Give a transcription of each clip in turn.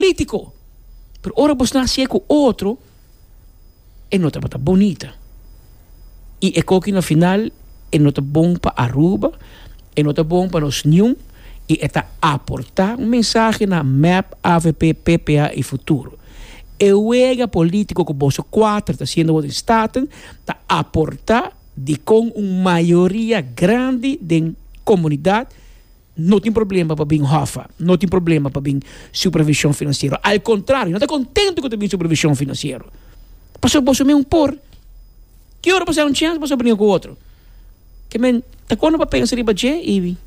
Politico. Pero ora bo sna sie cu otro e no tabata bonita. Y e coki na final e no ta bon pa Aruba, e no ta bon pa nos niun y e ta aporta un mensahe na mep, avp, ppa y futuro. E wega politico cu boso cuater ta haciendo awo den Staten ta aporta dicon un mayoria grandi den comunidad, no tin problema pa bin hòfa, no tin problema pa bin supervishon finansiero. Al kontrario, no ta kontentu ku ta bin supervishon finansiero. Pasobra boso mismu por. Ki ora boso a haña un chèns, boso a bringa ku otro. Ke men ta kòrda pa pensa riba dje i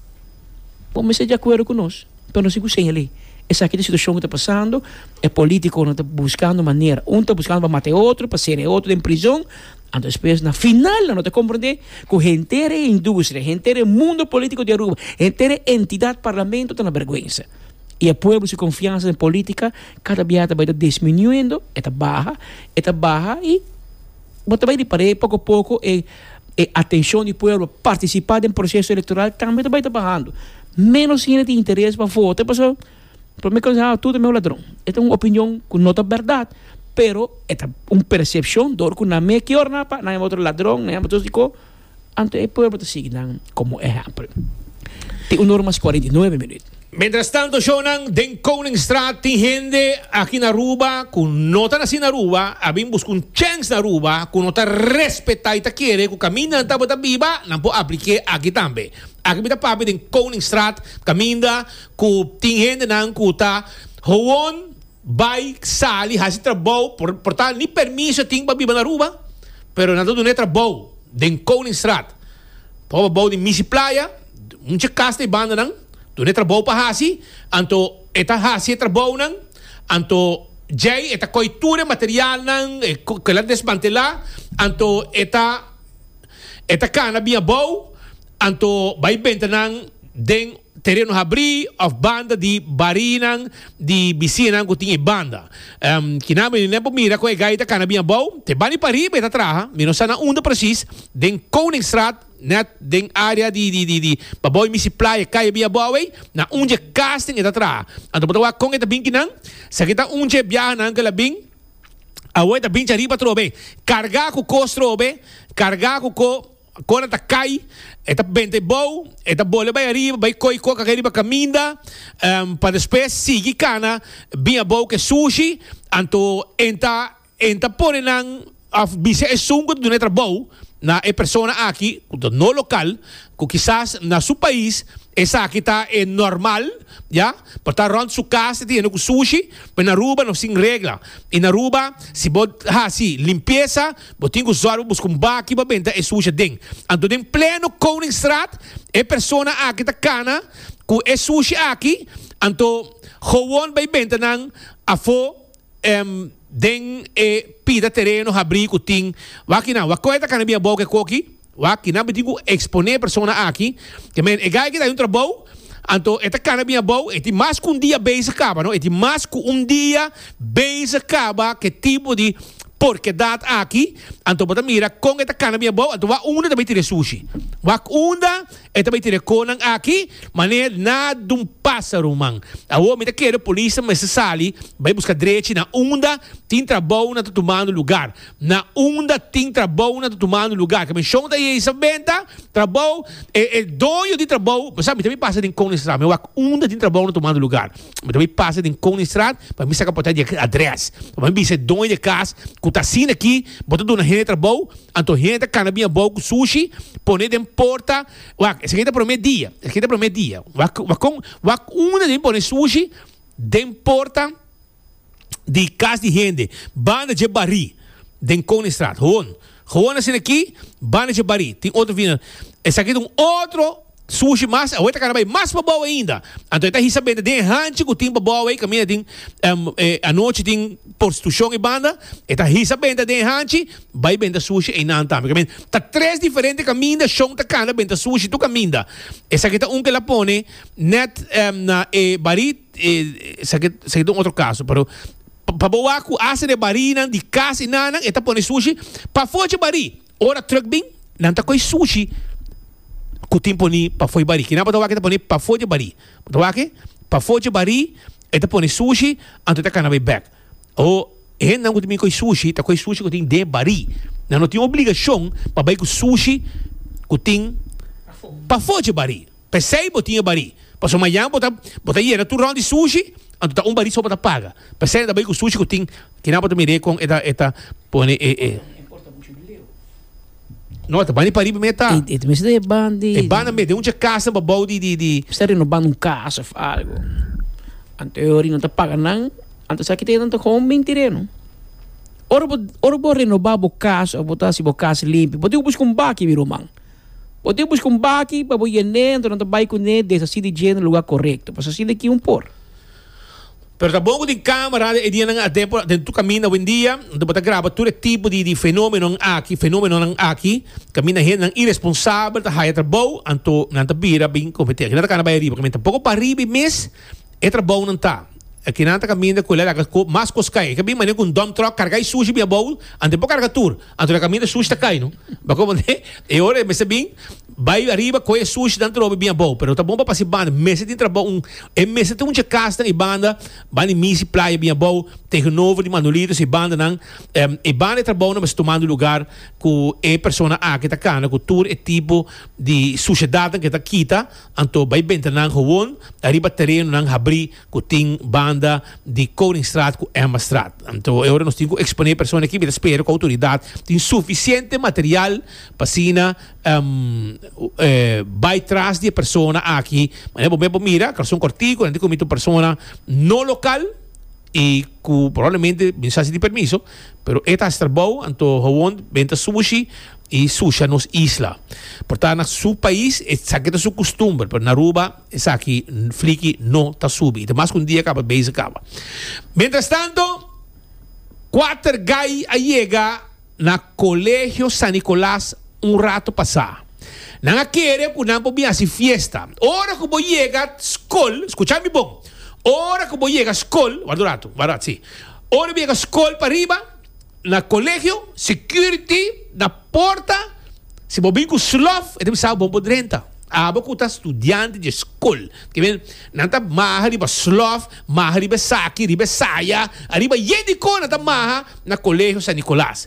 bo mester di akuerdo ku nos. Pero no si ku seña alí. Esaki ta e situashon ku ta pasando. E polítikonan ta buskando manera. Un ta buskando pa mata e otro, pa sera e otro den prizòn. Anto despues na final nan lo ta comprende cu henter e industria, henter e mundo politico di Aruba, henter e entidad Parlamento ta na berguensa. Y e pueblo su confiansa den politica cada bia ta bay ta disminuendo, e ta baha, e ta baha y bo ta bay di par'e poco a poco e e atencion di pueblo pa participa den proceso electoral tambe ta bay ta bahando. Menos hende tin interes pa vota pasobra. Prome konsèho, tur ta meu ladron. E ta un opinion ku no ta bèrdat, pero e ta un persepshon dor ku nan mei ke ora nan pa nan yama otro ladron, nan yama otro dikó, anto e pueblo ta sigui nan komo ehèmpel. Tin un ora mas kuarenta i nuebe minüt. Mientrastanto, shownan den Koningstraat tin hende aki na Aruba ku no ta nasí na Aruba, a bin buska un chèns na Aruba, ku no ta respetá i ta kere ku kaminda nan tabata biba nan por aplik'é aki tambe. Aki mi ta papia den Koningstraat kaminda. Ku tin hendenan ku ta howon bai sali hasi trabou por tal ni permiso tin pa biba na Aruba pero nan ta duna e trabou den Koningsraad por abou di Misi Playa mucha kas na e bandanan duna e trabou pa hasi anto e ta hasi e trabounan anto djei e ta koi tur e materialnan e kila desmantela anto e ta e ta kana bin abou anto bai bentanan den. Tereno habrí òf banda di barinan di bisinan ku tin e banda. Kinan mi no por mira kon e gai ta kana bin abou. Te bani pariba e ta traha. Mi no sa na unda presis, den Koningsraad, nèt den área di pa abou e misi playa kaya bin abou ei, na un dje casting e ta traha. Anto bo ta wak kon e ta bin kinan? Esaki ta un dje biahanan ku el a bin. Awor e ta bincha riba atrobe, kargá ku kos trobe, kargá ku ko. Kora ta kai, e ta benta e bou, e ta bole bai ariba, bai koi kok aki riba kaminda, pa despues sigui kana bin a bou ke sushi, anto en ta en ta pone nan of bisa esun ku ta duna e trabou na e persona aki ku ta no lokal, ku kisas na su pais esaki ta e normal, ya, por ta rònt su kas e ta yendo ku sushi, pero na Aruba no sin regla, i na Aruba si bo hasi limpiesa. Bo tin ku sòru buska un baki pa benta e sushi aden. Anto den pleno Koningsraad e persona aki ta kana ku e sushi aki, anto gewoon bai benta nan afó den e pida tereno habrí ku tin. Wak kinan, wak kon e ta kana bin abou ku e koki? Wak, y nan mitin cu expone e persona aki, te men e gay aki ta hay un trabou, anto e ta cana bin abou, e tin mas cu un dia bezig caba, no, e tin mas cu un dia bezig caba c'e tipo di porquedad aki, anto bo ta mira con e ta cana bin abou, anto wak unda ta bay tira e sushi, wak unda e ta bay tira e conan aki, maneer na dun pasa ruman, awor mi ta kere polis ta mester sali bay busca drechi na unda tin trabounan ta tumando lugar, Na unda tin trabou nan ta tumando lugar. Ke menshon ta ei sa benta, trabou, e e doño di trabou, bo sa mi ta bai pasa den Koningstraat, mi a wak unda tin trabou nan tumando lugar. Mi ta bai pasa den Koningstraat pa mi saka porta di adrès. Ora mi bisa e doño di e kas ku ta asina aki, bo ta duna hende trabou, anto hende ta kana bin abou ku sushi, pone den porta, wak esaki ta promé dia, esaki ta promé dia. Wak wak kon, wak unda den mi pone sushi den porta. di kas di hende banda dje barí den Koningstraat. Gewoon, gewoon asina aki, banda dje barí. Tin otro vina, esaki ta un otro sushi mas, awe ta kara bai mas pa bou ainda. Anto e ta hisa bende den e hanchi ku tin pa bou ei, kaminda tin, anochi tin porstitushon ei banda, e ta hisa bende den e hanchi, bai bende sushi einan tambe. Kaminda ta tres diferente kaminda Shon ta kanda bende sushi tur kaminda. Esaki ta un ku el a pone nèt na e barí. Esaki ta un otro kaso, pero pa bo wak ku hasta e barinan di kas i nannan e ta pone sushi pafó dje barí. Ora tròk bin nan ta kohe sushi ku tin poni pafó e barí. Kinan bo ta wak e ta pone pafó dje barí? Bo ta wak e pafó dje barí e ta pone sushi anto e ta kana bo e bèk. O hendenan ku ta bin kohe sushi ta kohe sushi ku tin den e barí. Nan no tin obligashon pa bai ku sushi ku tin pafó dje barí. P'esei bo tin e barí. Pasobra mañan bo ta bo ta yena tur rònt di sushi, anto ta un barí so bo ta paga. P'esei nan ta bai ku sushi ku tin kina bo ta mir'é kon e ta e ta pone e e. No, e ta bandi parí promé ta. E ta mester e bandi. E banda mete un chakasnan babou di di di. Mester renobando un kas òf algu. Anto e ora nan ta paga nan, anto esaki ta yena nan ta hòm bin tireno. Ora bo ora bo renobá bo kas òf bo ta hasi bo kas limpi, bo tin ku buska un baki, mi ruman. Bo tin buska un baki pa bo yen'é anto nan ta bai kuné desasí di dje na lugá korekto. Pas asina aki un por. Pero ta bon ku tin kámara den e dianan aden por den tur kaminda wendia anto bo ta graba tur e tipo di di fenómenonan aki fenómenonan aki kaminda hendenan iresponsabel ta haya trabou anto nan ta bira bin komet'é. Aki nan ta kana bai ariba kaminda tampoco pariba i mes e trabounan ta. Aki nan ta kaminda ku el a laga mas kos kai. E ka bin mane ku un dump truck karga e sushi bin abou anto e por karga tur. Anto na kaminda sushi ta kai no. Ba komo te e ora e mester bin bai ariba koe e sushi dan trobe bin abou. Pero ta bon pa pasa e banda. Mester tin trabou un e mester tin un chakasnan e banda ban di misi playa bin abou tegenover di Manolitos e bandanan. Em e banda e trabounan mester tumando lugar ku e persona aki ta kana ku tur e tipo di sushedatnan ke ta kita. Anto bai bentanan howon ariba terenonan habri. ku tin banda di Koningstraat ku Emmastraat. Anto e ora nos tin ku eksponé persona aki mi ta spera ku outoridat tin sufisiente material pa asina bai tras di e persona aki manera bo mep bo mira Corazon Cortico nan tin kominti un persona no lokal i ku probablemente bin sa sin tin permiso pero e ta hasi trabou anto howon ben ta sushi i susha nos isla por tanto na su pais esaki ta su kustumber pero na Aruba. Esaki fliki no ta subi. I ta mas ku un dia kaba bes a kaba. Mientras tanto, kuater gai a yega na Kolegio San Nicolas un rato pasá. Nan a kere ku nan por bin hasi fiesta. Ora ku bo yega skol, skucha mi bon, ora ku bo yega skol, ward un ratu, ward un ratu, si. Ora ku bo yega skol pa riba. Na colegio security na porta si bo bin cu slof e ta bisa bo bo drenta abo cu ta studiante dje school ta bien nan ta maha riba slof maha riba esaki riba esaya ariba yey di con nan ta maha na colegio san Nicolas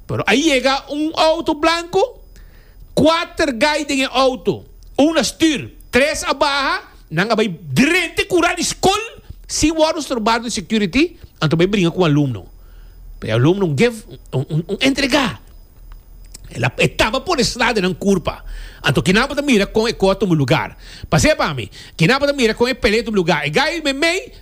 pero a yega un auto blanco cuater guy den e auto un na stuur tres a baha. Nan a bai drente kura di skol sin wòrdu strobar di security, anto bai bringa ku alumno. P'e alumno gèf un entregá. E taba por esla den nan kurpa. Anto kinan por ta mira kon e kò a tuma lugá? Pas'e pa mi. Kinan por ta mira kon e pelea a tuma lugá? E gay meimei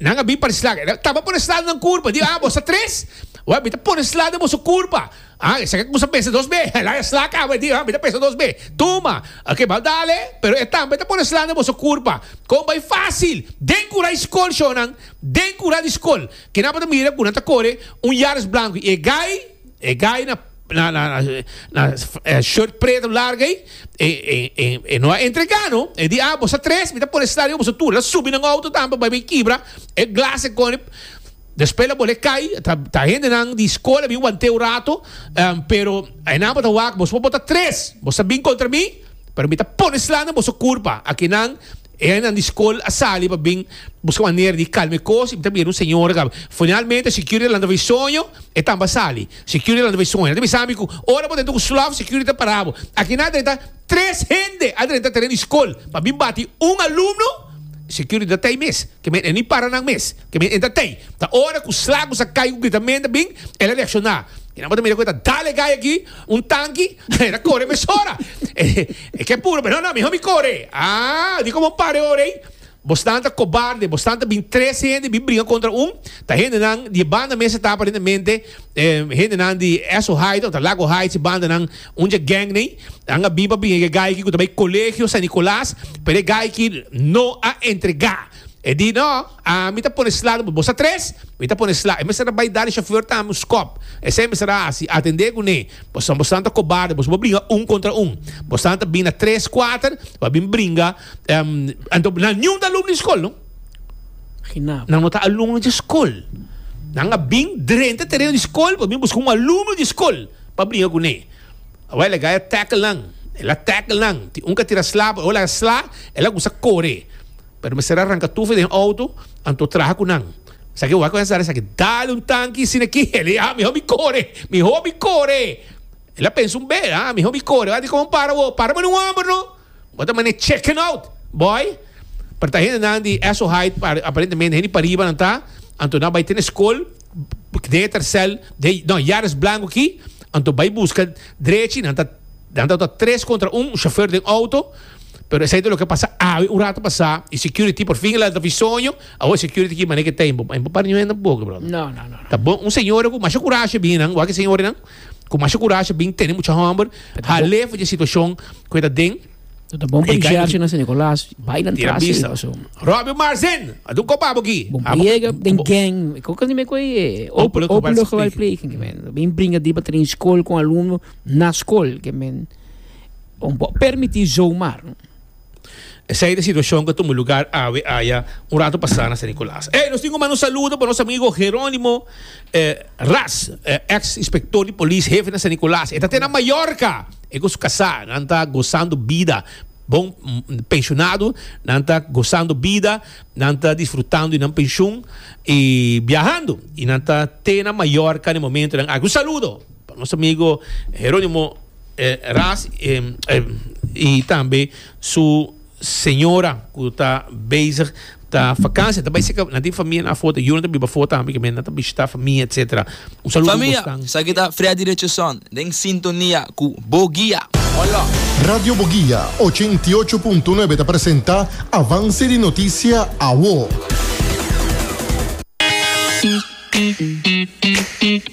nan a bin par'e slak. E taba por esla den nan kurpa. Di, Ah, boso tres? Wak, mi ta por esla den boso kurpa. Ah, esaki ta cusa pensa dos be. Laga e sla cabo e di, ah, mi ta pensa dos be. Tuma! Ok, bal dale, pero e tambe ta pone sla na boso curpa. Con bay facil! Den cura y scol, shonan, den cura di scol, ke nan por ta mira cu nan ta core un Yaris blanco y e guy, e guy na, na, na, na shirt preto largo ey, e, e, e, e no a entrega no. E di, ah, boso tres, mi ta pone sla riba boso tur. Nan subi nan auto tambe, bay bay kibra e glass e con e. Despues lo bolé kai, ta hendenan di skol a bin want'é un rato, pero e nan bo ta wak, boso por bota tres, boso ta bin kontra mi, pero mi ta pone sla na boso kurpa. Aki nan, e nan di skol a sali pa bin buska manera di kalma e kos i mi ta bira un señora kaba. Finalmente security a lanta bai soño, e tambe a sali. Security a lanta bai soño, el a bisa mi ku ora bo drentu ku slof, security ta para bo. Aki nan a drenta tres hende a drenta teren di skol pa bin bati un alumno, security ta tei mes, ke men e ni para nan mes. Ke men entra tei. Ta ora ku Slagos a kai ku gritamenta bin el a reakshoná. Kinan bo ta mira ku e ta dale gai aki? Un tanki? E ta kore mesora. E ke puru, pero no, mihó mi kore. Aa, di komo un par de ora ei. Bosnan ta kobarde, bosnan ta bin trese hende bin bringa kontra un. Ta hendenan di e banda mes ta tapa den e mente, hendenan di Esso Heights ota Lago Heights e bandanan, un dje gèng nei. Nan a bin pa bringa ku e gai aki ku ta bai Kolegio San Nikolaas, pero e gai aki no a entregá. E di, No, ami ta pone sla riba bo. Sa tres? Mi ta pone sla. E mester a bai da di shofèr ta ami un skòp. Esei e mester a hasi. Atendé ku ne. Bosan, bosan ta kobarde. Boso bo bringa un kontra un. Bosan ta bini na tres, kuater pa bin bringa. Anto nan niun ta alumno di skol, no. Nan no ta alumno di skol. Nan a bin drenta tereno di skol pa bin buska un alumno di skol pa bringa ku ne. Awor el a gaya tackle nan, el a tackle nan, tin un ka tira sla por awor laga sla, el a gusta kore, pero mester a ranka tufi den outo, anto traha ku nan, esaki awor a konsha sa esaki, dale un tanki sina ki, el a di ah mihor mi kore, mihor mi kore, el a pensa un bes ah mihor mi kore, wan tin kon para awor, para mano un homber no. Bo ta mane chicken out boy. Pero ta hende nan di eso height aparentemente hende pariba nan ta. Anto nan bai tene school den e tercel den no yaris blanco aki anto bai busca drechi nan ta nan ta ta tres contra un chauffeur den auto pero esey ta loke pasa awe un rato pasa y security por fin la davisoño awo security aki mane ke ta imbo imbo para niño hende tampoco brother. No no no no. Ta bon un señora cu masha curashi a bini nan wak e señorinan. Cu masha curashi bin tene mucha homber. Hale fu dje situacion cu e ta den. No ta bon pa di Sherchi na San Nicolas. Bai nan tras e paso. Robby Marzen, a dun copa abo ki. Bon pa yega den gang. E coca si me coi e open local speaking. Speaking, men. Bin bringa di pa trin school con alumno na school. Ke men. Bon pa permiti zomaar. Esei ta e situashon ku a tuma lugar awe aya un ratu pasá na San Nikolaas. Ey, nos tin ku manda un saludo pa nos amigo Gerónimo Ras, eks inspektor di polis hefe na San Nikolaas. E ta te na Mallorca, e ku su kasá. Nan ta gosando bida bon, penshonado, nan ta gosando bida, nan ta disfrutando di nan penshon i biahando. I nan ta te na Mallorca na e momentonan aki. Un saludo! Pa nos amigo Geronimo Ras y tambe su señora cu ta bezig ta vacancia ta bay cerca nan tin famia nan afo ta yu nan ta biba afo tambe kimen nan ta bishita famia etcetera un saludo Famia, nos tan. Esaki ta Freddy Richardson den sintonia cu Boguia. Hola! Radio Boguia ochenta i ocho punto nuebe ta presenta Avance di Noticia Awo.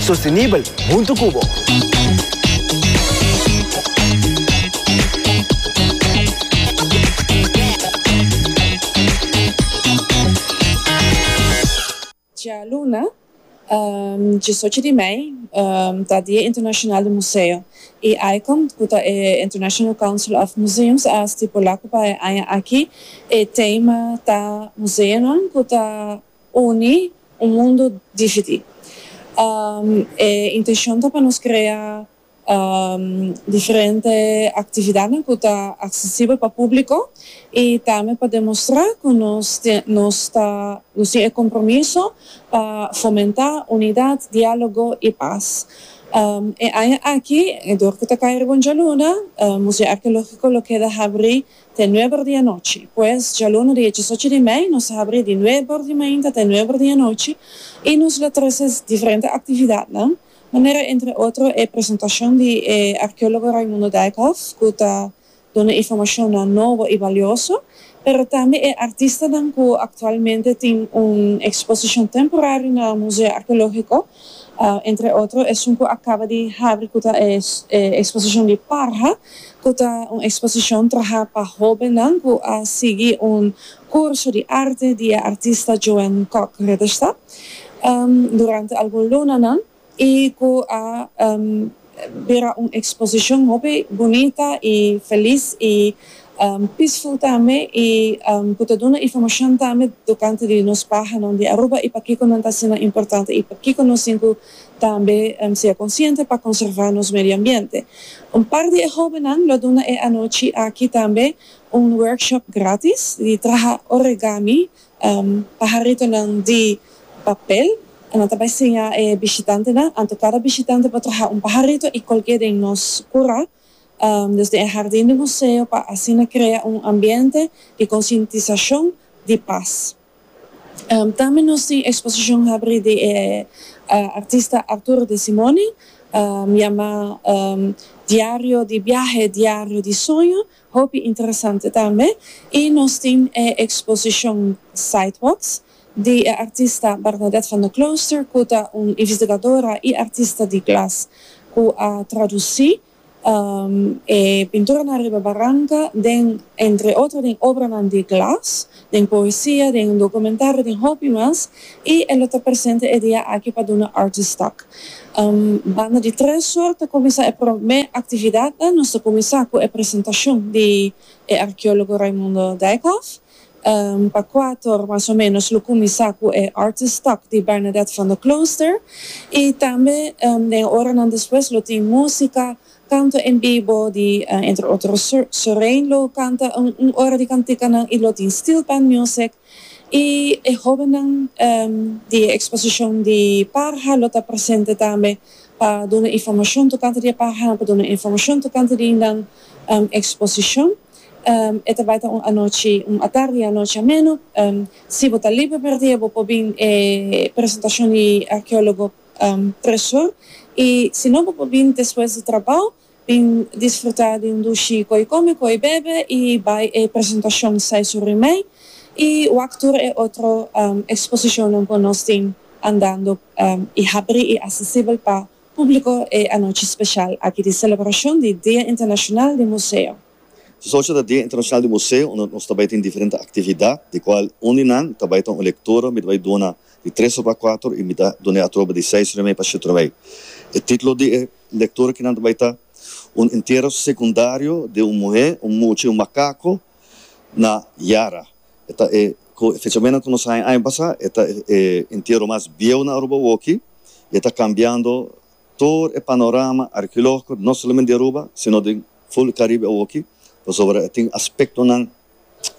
Sostenibel hunto cu bo. Djaluna, diesocho di mei, ta Dia Internacional di Museo y ICOM, cu ta e International Council of Museums, a stipula cu pa e aña aki e tema ta Museonan cu ta Uni un mundu difiti. E intencion ta pa nos crea diferente actividadnan cu ta accesibel pa publico y tambe pa demostra cu nos nos ta nos tin e compromiso pa fomenta unidad, dialogo y paz. E aña aki, dor cu ta cay riba un djaluna, Museo Archeologico lo keda habri te nueber di anochi. Pues, djaluna di echi sochi di mei, nos a habri di nueber di mainta te nueber di anochi i nos lo trece diferente actividadnan, manera entre otro e presentacion di e arqueologo Raimundo Dijkhoff cu ta duna informacionnan nobo i balioso, pero tambe e artistanan cu actualmente tin un exposition temporario na Museo Archeologico Entre otro esun cu a caba di habri cu ta e exposicion di Parha, cu ta un exposicion traha pa hobennan cu a sigui un curso di arte di e artista Joan Kok Ritterstadt durante algun lunanan y cu a Bira un exposicion hopi bunita y feliz y peaceful tambe y cu ta duna informacion tambe tocante di nos pahanan di Aruba y pakico nan ta asina importante y pakico nos tin cu tambe sea consciente pa conserva nos medio ambiente. Un par di e hobennan lo duna e anochi aki tambe un workshop gratis di traha origami Paharitonan di papel. Nan ta bai siña e bishitantenan anto kada bishitante por traha un paharito i kolk'é den nos kura, desde e hardin di museo pa asina krea un ambiente di konsientisashon di pas. Tambe nos tin eksposishon habrí di e artista Arturo de Simone yamá Diario di biahe, Diario di soño, Hopi interesante tambe y nos tin e exposicion Sidewalks di e artista Bernadette van der Klooster cu ta un investigadora y artista di glas cu a traduci e pinturanan riba baranca den entre otro den obranan di glas den poesia, den documentario, den hopi mas, y e lo ta presente e dia aki pa duna Artist Talk. Banda di tres sor ta cuminsa e prome actividadnan, nos ta cuminsa cu e presentacion di e archeologo Raimundo Dijkhof, pa cuator mas o menos lo cuminsa cu e Artist Talk di Bernadette van der Klooster, y tambe den e oranan despues lo tin musica, Kanto en bibo di entre otro Sorein lo kanta un ora di kantikanan y lo tin steel pan music y e hobennan di e exposicion di parha lo ta presente tambe pa duna informacion tocante di e parhanan pa duna informacion tocante di nan exposicion e ta bay ta un anochi un atardi y anochi ameno si bo ta liber merdía bo por bin e presentacion di arqueologo preshon y si no bo por bini despues di trabao bin disfruta di un dushi cu ey come cu ey bebe y bay e presentacion sai su rimey y wak tur e otro exposicionnan cu nos tin andando y habri y accesibel pa publico e anochi special aki di celebracion di Dia Internacional di Museo. Nos oca ta Dia Internacional di Museo unda nos ta bai tin diferente actividad di cual un di nan ta bai ta un lectura mi ta bai duna di tres ora cuater y mi ta dun'e atrobe di seis ora y mei pa shete ora y mei. E titulo di e lectura ki nan ta bai ta Un entierro secundario di un muhe, un mucha y un macaco na Yara. E ta e cu e fechamenan cu nos haya aña pasa e ta e entierro mas bieu na Aruba woki y e ta cambiando tur e panorama archeologico no solamente di Aruba sino den Full Caribe awoki pasobra e tin aspectonan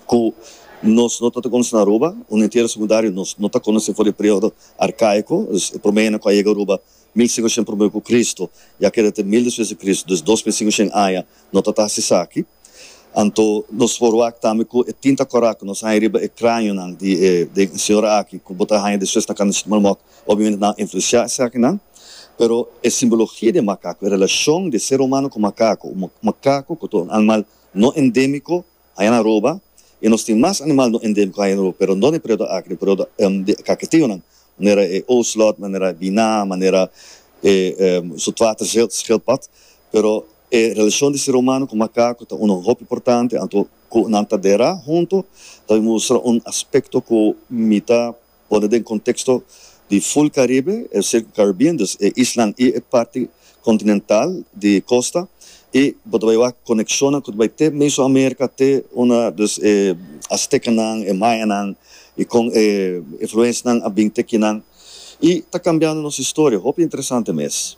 cu nos no ta ta conoce na Aruba, un entierro secundario nos no ta conoce for di e periodo arcaico, dus e prome hende cu a yega Aruba mil cinco shen prome cu Cristo y a keda te mil despues di Cristo, dus dos mil cinco shen aña no ta ta haci esaki. Anto nos forwak tambe cu e tin ta corac nos haña riba e cranionan di e den e señora aki cu bo ta haña despues na Cana Chicmalmot. Obviamente nan a influenciá esakinan, pero e simbologia di e makaku, e relacion di e ser humano cu makaku, un makaku cu ta un animal no endemico, haña na Aruba, y nos tin mas animal no endemico haña na Aruba, pero no den e periodo aki, den e periodo di kaketionan, manera e ocelot, manera e biná, manera e zoetwaterschildpad, pero e relacion di ser humano cu makaku ta uno hopi importante, anto cu nan ta dera hunto, ta mustra un aspecto cu mi ta Pone den konteksto di ful Karibe, e Circum Caribbean, dus e islan i e parti kontinental di kosta, i bo ta bai wak konekshonnan ku ta bai te Meso Amerika, te una, dus e Astekanan, e Mayanan, i kon e influensnan a bin te kinan, i ta kambiando nos historia. Hopi interesante mes.